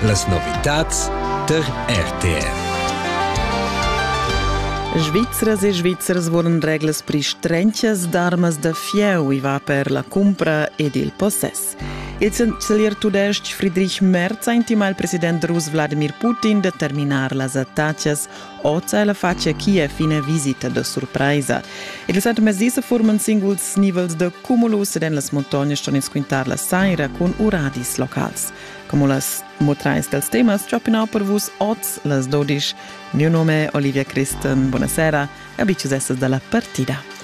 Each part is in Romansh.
Las novitads tar RTR. Svizras e Svizzers vulan reglas pri strenchas d'armas da fieu i va per la cumpra ed il possess. Il chancelier tudestg Friedrich Merz ha intimà il president rus Wladimir Putin da terminar las attacas Oz è la facia chi è fina visita da surpraisa. Il setmezdi se forman singuls nivels de cumulus ed en las montagnas ston ins quintar la saira con uradis locals. Como las motrais dels temas giopinau per vus oz las 12. Mio nome è Olivia Christen. Buonasera e abicius essas dalla partida.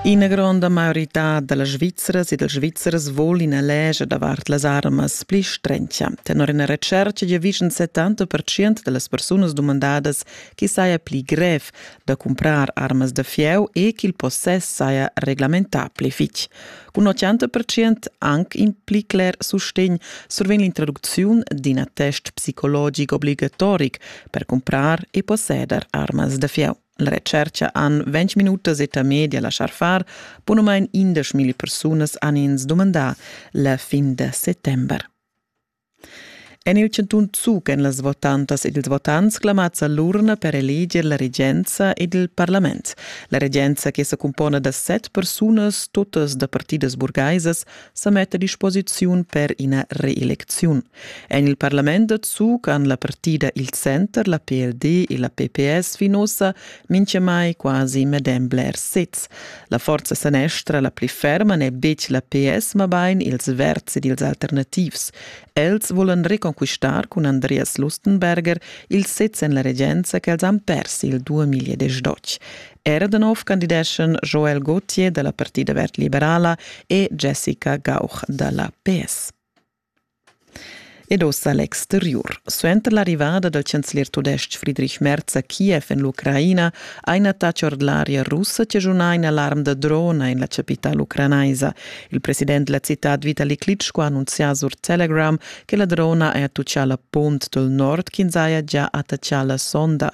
Ina gronda maiorità da las Svizras e dals Svizzers vol ina legia davart las armas pli strentga. Tenor ina retschertga giavischan 70% da las persunas dumandadas che saja pli grev da cumprar armas da fieu e ch'il possess saja reglamentà pli fitg. Cun 80% anc impli cler sustegn survegn l'introducziun d'in attest psicologic obligatoric per cumprar e posseder armas da fieu. La recerca han 20 minutas eta media lasciar far, punumain 10.000 persunas han ins dumandà la fin da settembre. En il chantun Zug èn las votantas ed ils votants clamads a l'urna per eleger la regenza ed il parlament. La regenza, che sa cumpona da set persunas, totas da partidas burgaisas, sa metta a disposiziun per ina reelecziun. En il parlament da Zug han la partida il Center, la PLD e la PPS fin ossa minchamai quasi medem blers sezs. La forza sanestra la pli ferma n'è betg la PS, mabain ils verds ed ils alternativs. Els volan reconquistar cun Andreas Lustenberger il sez en la regenza ch'els han pers il 2012. Erdenov candideschan Joel Gauthier da la Partida verd liberala e Jessica Gauch da la PS. Ed ussa l'exteriur. Suenter l'arrivada dal chancelier tudestg Friedrich Merz a Kiev en l'Ucraina ha in attacc ord l'aria russa chaschunà in alarm da drona en la chapitala ucranaisa. Il president della citad Vitali Klitschko ha annunzià sur Telegram che la drona ha attaccià la punt dal nord ch'ins haja gia attaccà la sonda.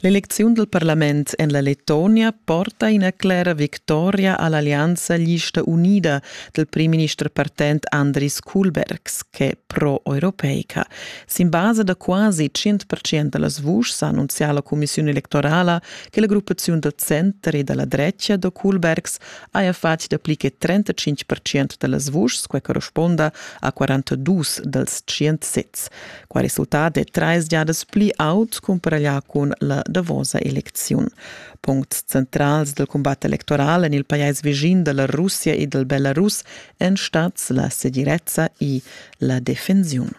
L'elecziun dal parlament en la Lettonia porta ina clera victoria a l'allianza Lista unida dal primminister partent Andris Kuhlbergs ch'è pro-europeica. Sin basa da quasi 100% da las vuschs ha annunzià la cumissiun electorala che la gruppaziun dal center e da la dretga da Kuhlbergs haja fatg dapli che 35% da las vuschs, quai corresponda a 42 dals 100 sezs. Quai resultat è trais giadas pli aut cumpareglià cun la davosa elecziun. Puncts centrals del cumbat electoral en il pajais vischin da la Russia e dal Belarus èn stads la segirezza e la defensiun.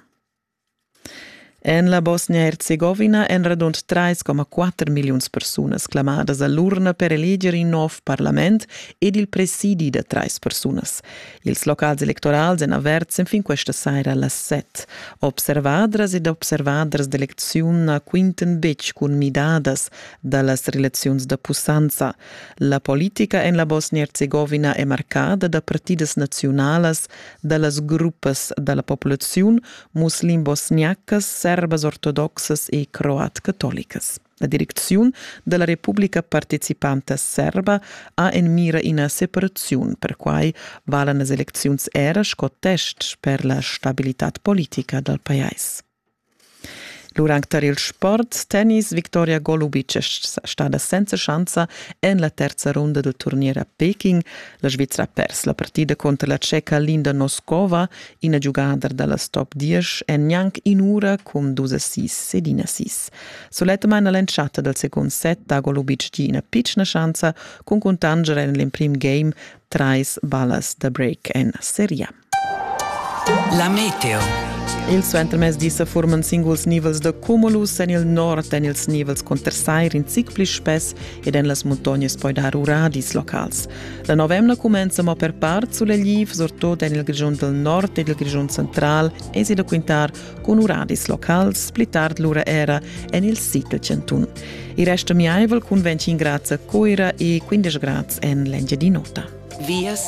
En la Bosnia-Herzegovina èn radund 3,4 milliuns persunas clamadas a l'urna per eleger in nov parlament ed il presidi da trais persunas. Ils locals electorals èn averts enfin questa saira a las set. Observadras ed observaders d'elecziun na quintan betg cun midadas da las relaziuns da pussanza. La politica en la Bosnia-Herzegovina è marcada da partidas naziunalas da las gruppas da la populaziun muslim-bosniacas, serbas ortodoxas e croat-catolicas. La direcziun da la Republica participanta serba ha en mira ina separaziun, perquai valan las elecziuns era sco tests per la stabilitad politica dal pajais. L'urang tar il sport tennis Viktoria Golubic è stada senza schanza en la terza runda del turnier a Peking. La Svizra ha pers la partida contro la ceca Linda Noskova, ina giugadra dalla top 10, en gnanc in ura cun 6 sedin assist. Sulettamain a l'entschatta dal secund set dago Lubic gi ina pitschna schanza cun cuntanger en l'emprim game trais ballas da break en seria. La meteo. Il suentermez di sa furman singuls nivels da cumulus en il nord en ils nivels cunter sair in zic pli spess ed en las muntognas poi dar uradis locals. La novemna cumenza mo per part sulegliv, surtut en il Grischun del Nord ed il Grischun central, esi da quintar cun uradis locals, pli tard lura era en il sid del Cantun. Il resto miaivel cun 25 grads a Coira e 15 grads en l'Engiadin'Ota. Vias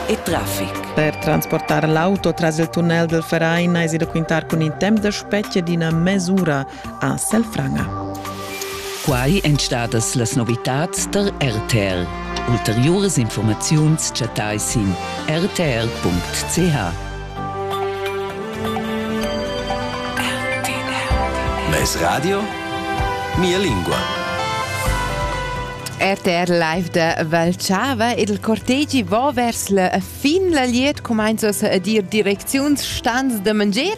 e traffic. Per transportare l'auto tras il tunnel del Verein es da quintar cun in temp da specie d'ina mesura a Selfranga. Quai èn stadas las novitads tar RTL. Ulteriuras informaziuns chattai sin rtl.ch. Mes radio? Mia lingua. RTR live de Valchava ed il cortegi va vers la fin la liet cumainzas a dir direcziuns stans de mangier